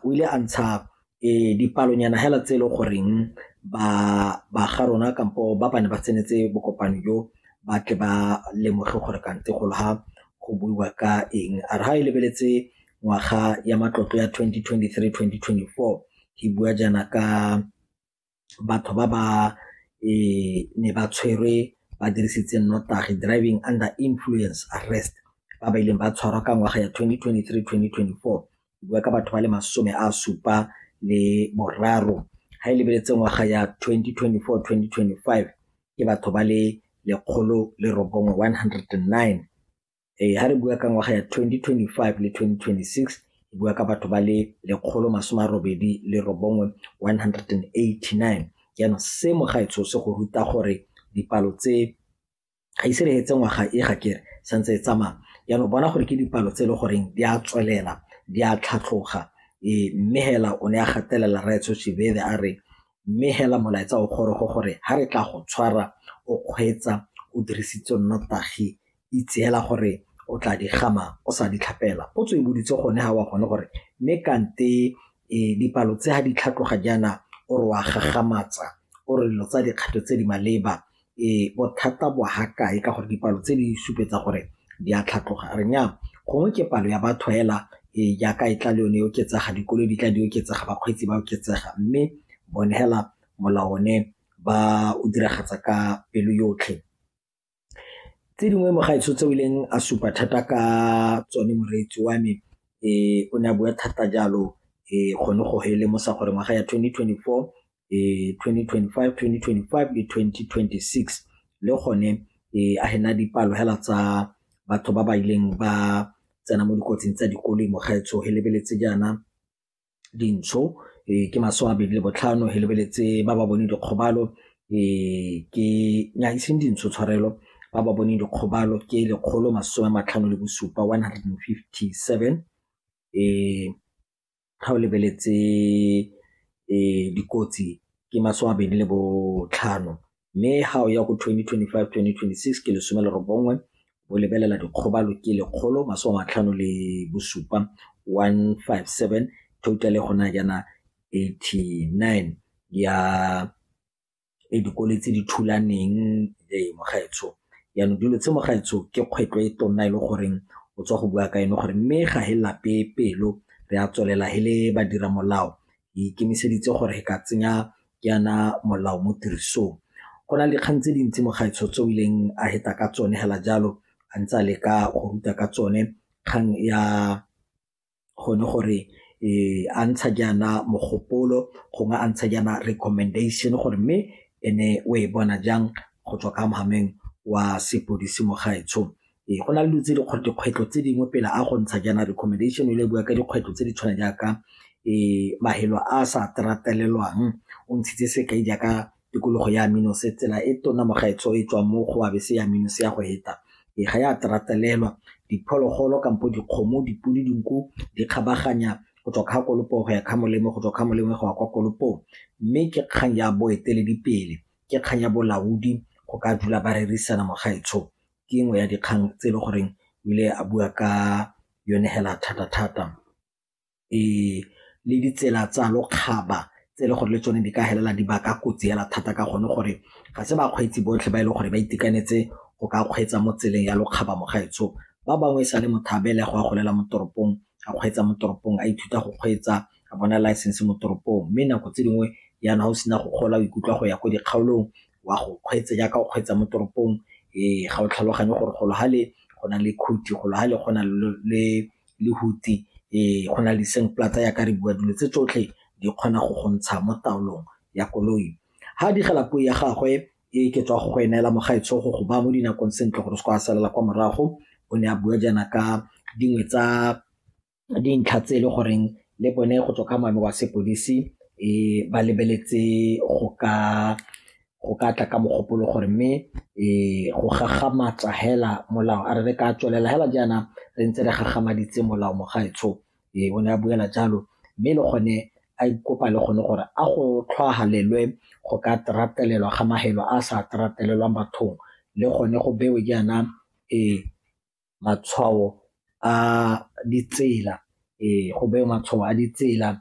o ile a ntsha um dipalonyana hela tse e le goreng ba ba ga rona kampo ba bane ba tsenetse bokopano jo ba tle ba lemoge gore kante go ha go buiwa ka eng a re ga e lebeletse ngwaga ya matlotlo ya 2023-2024 e bua jaana ka batho ba ba ne ba tshwerwe ba dirisitse nnotagi, driving under influence arrest, ba ba ileng ba tshwarwa ka ngwaga ya 2023-2024 bua ka batho ba le masome a supa le boraro ga e lebeletse ngwaga ya 2024-2025 ke batho ba le lekgolo le robongwe 109 ee ga re bua ka ngwaga ya 2025 le 2026 e bua ka batho ba le lekgolo masome a robedi le robongwe 189 jaanong se mogaetsho se go ruta gore dipalo tse ga ise re etse ngwaga e ga kere santse e tsamaya jaanong bona gore ke dipalo tse e le goreng di a tswelela di a tlhatlhoga ee mme hela o ne a gatelela raetsho shebebe a re mme hela molaetsa o gorogo gore ga re tla go tshwara o kgweetsa o dirisitse nnotagi itseela gore o tla di gama o sa di tlhapela potso e boditse gone ga wa gone gore mme kante e, dipalo tse ga di tlhatloga jaana o re wa gagamatsa o re dilo tsa dikgato tse di maleba e bothata bo ha kae ka gore dipalo tse di supetsa gore di a tlhatloga re nya gongwe ke palo ya batho hela e jaaka e tla le yone e oketsega dikolo di tla di oketsega bakgweetsi ba oketsega mme bone hela molao one ba o diragatsa ka pelo yotlhe tse dingwe mo gaetsho tse o ileng a supa thata ka tsone moreetsi wa me um o ne a bua thata jalo um gone go he lemosa gore ngwaga ya 2024 um 2025 2025 le 2026 le gone um a hena dipalo hela tsa batho ba ba ileng ba tsena mo dikotsing tsa dikoloi mo gaetsho he lebeletse jaana dintsho ee, ke masome a mabedi le botlhano he lebeletse ba ba boneng dikgobalo ee, ke nyaiseng dintsho tshwarelo ba ba boneng dikgobalo ke lekgolo masome a matlhano le bosupa 157 ee ga o lebeletse ee dikotsi ke masome a mabedi le botlhano mme ga o ya go 2025 2026 ke lesome le robongwe o lebelela dikgobalo ke lekgolo masome a matlhano le bosupa 157 total gona jaana 89 ya e dikole tse di thulaneng le mogaetsho yaanong dilo tse mogaetsho ke kgwetlo e tonna e le goreng o tswa go bua ka eno gore mme ga he lape pelo re a tswelela he le badira molao e ikemiseditse gore e ka tsenya yana molao mo tirisong go na le dikgang tse dintsi mo gaetsho tse o ileng a heta ka tsone hela jalo a ntse a leka go ruta ka tsone kgang ya gone gore e a ntsha jaana mogopolo gongwe a ntsha jaana recommendation gore mme ene o e bona jang go tswa ka mogameng wa sepodisi mo gaetsho Ee, go na le dilo tse dikgwetlho tse dingwe pele a go ntsha jaana recommendation e le bua ka dikgwetlho tse di tshwana jaaka um mafelo a sa tatelelwang o ntshitse sekai jaaka tikologo ya Aminos tsela e tona mo gaetsho e tswang mo go abese ya Aminos ya go heta e ga ya tatelelwa diphologolo kampo dikgomo dipodi dinku di kgabaganya go tswa kga kolopo go ya kga molemo go tswa kga molemo go ya kwa kolopong mme ke kgang ya boeteledipele ke kgang ya bolaodi go ka dula ba rerisana mo gaetsho ke nngwe ya dikgang tse e le goreng o ile a bua ka yone hela thata-thata le ditsela tsa lokgaba tse e le gore le tsone di ka felela di baka kotsi hela thata ka gone gore ga se bakgweetsi botlhe ba e leng gore ba itekanetse go ka kgweetsa mo tseleng ya lokgaba mo gaetsho ba bangwe e sa le motho a belegwa a golela mo toropong a kgweetsa mo toropong a ithuta go kgweetsa a bona license mo toropong mme nako tse dingwe yana o sena go gola o ikutlwa go ya ko dikgaolong wa go kgweetsa jaaka o kgweetsa mo toropong um ga o tlhaloganye gore golo ga le go na le khuti golo ga le go na le lehuti um go na le seng platsa yaka re bua dilo tse tsotlhe di kgona go go ntsha mo taolong ya koloi ga digela puo ya gagwe e ke tswa go eneela mogaetsho go go ba mo dinakong sentle gore se kwa salela kwa morago o ne a bua jaana ka dingwe tsa dintlha tse e le goreng le bone go tswa ka moabi wa sepodisi um ba lebeletse go ka go ka tla ka mogopolo gore mme um go gagamatsa hela molao a re re ka tswelela hela jaana re ntse re gagamaditse molao mogaetsho um o ne a buela jalo mme le gone a ikopa le gone gore a go tlhwagalelwe go ka tratelelwa ga mahelo a sa tratelelwang bathong le gone go bewe jaana um matshwao a ditsela, go bewe matshwao a ditsela.